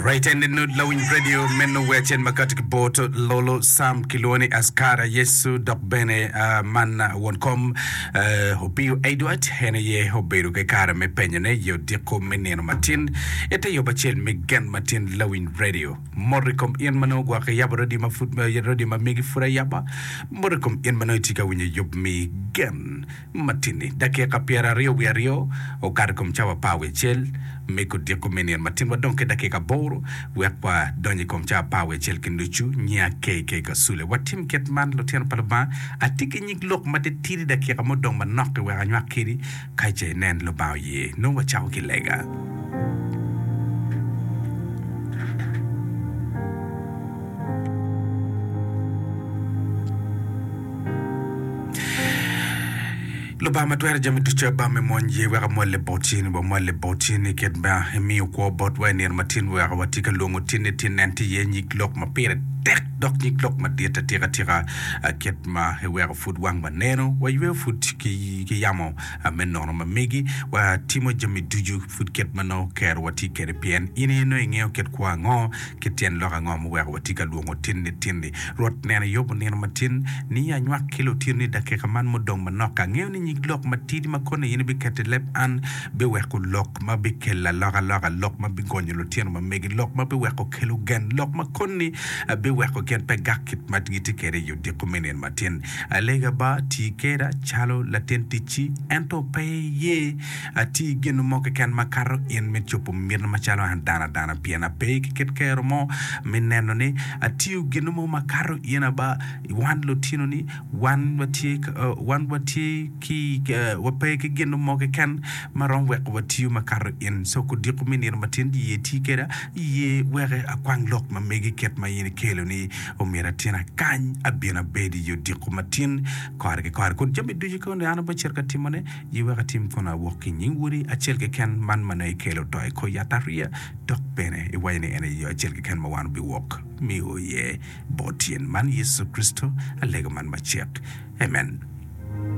Right and the Nude Lawiny Radio meno wer acel ma kati ki bot Lolo Sam kilwongo ni Askara Yecu dok bene ah, man ah, won kom eh, Opiyo Edward en aye obedo ki kare me penyone i odiko me nino matin ite yob acel me gen matin Lawiny Radio mot i kom in manongo gwaka yabo radio ma pud radio ma megi pud ayaba mot i kom in manongo itye ka winyo yub mi gen Matini, dakika pyeraryo wiye aryo okato i kom cawa apar wiye acel me kodiko me nino matin. Wadong ki dakika aboro wek wadony i kom cawa apar wiye acel ki nucu. Nyinga KK. Kasule. Watim kit man, lutino pa Lubanga. Atye ki nyig lok matitidi dakika mo dong manok-ki wek anywak kedi, ka ce inen Lubanga oye. Nongo wacako ki lega. Lubanga ma twero jami ducu Aba me mony ye wek amwalle botgi ni wamwalle botgi ni kit ma imiyo kwo botwa i nino ma tin wek watye ka lwongo tinni tin nen tye iye nyig lok ma pire tek dok nyig lok madit atika tika kit ma iweko pud wangwa neno wayweyo pud ki yamo me nono ma megi watimo jami ducu pud kit ma nongo okerowa tye kwede pien in aye nongo ingeyo kit kwo ango Ki tyen lok ango ma oweko watye ka lwongo tinni tinni? Rwot neno Eyob onino matin, ni anywak ki lutinni i dakika man mudong manok. Angeyo ni nyig lok matidi ma koni in ibiketo i leb an biweko lok ma bikelo alokaloka, lok ma bigonyo lutino ma megi, lok ma biweko kelo gen, lok ma koni biweko gin pe gak kit ma gitye kwede i odiko me nino matin. Alega ba, ti keda calo latin ticci, ento pe iye. Ati gin mo keken ma kato in me cobo miti macalo an dano adana pien ape ki kit kero mo me neno ni atiyo gin mo ma kato in aba i wan lutino ni wan watye wan watye ki wape ki gin mo keken ma romo weko watiyo ma kato in so kudiko me nino matin di ye ti keda i ye weke akwang lok ma megi kit ma in ikelo ni omyero atin akany abin abedi i odiko matin kore ki kore kun jami ducu koni an abe cito ka timone Ye wek atim kono awok ki i nying Wodi acel keken man ma nongo ikelo to i kor yatariya, dok bene iwaco ni en aye yo acel keken ma wan wubiwok miyo iye bot tyen man, Yecu Kricito, alega man macek. Amen.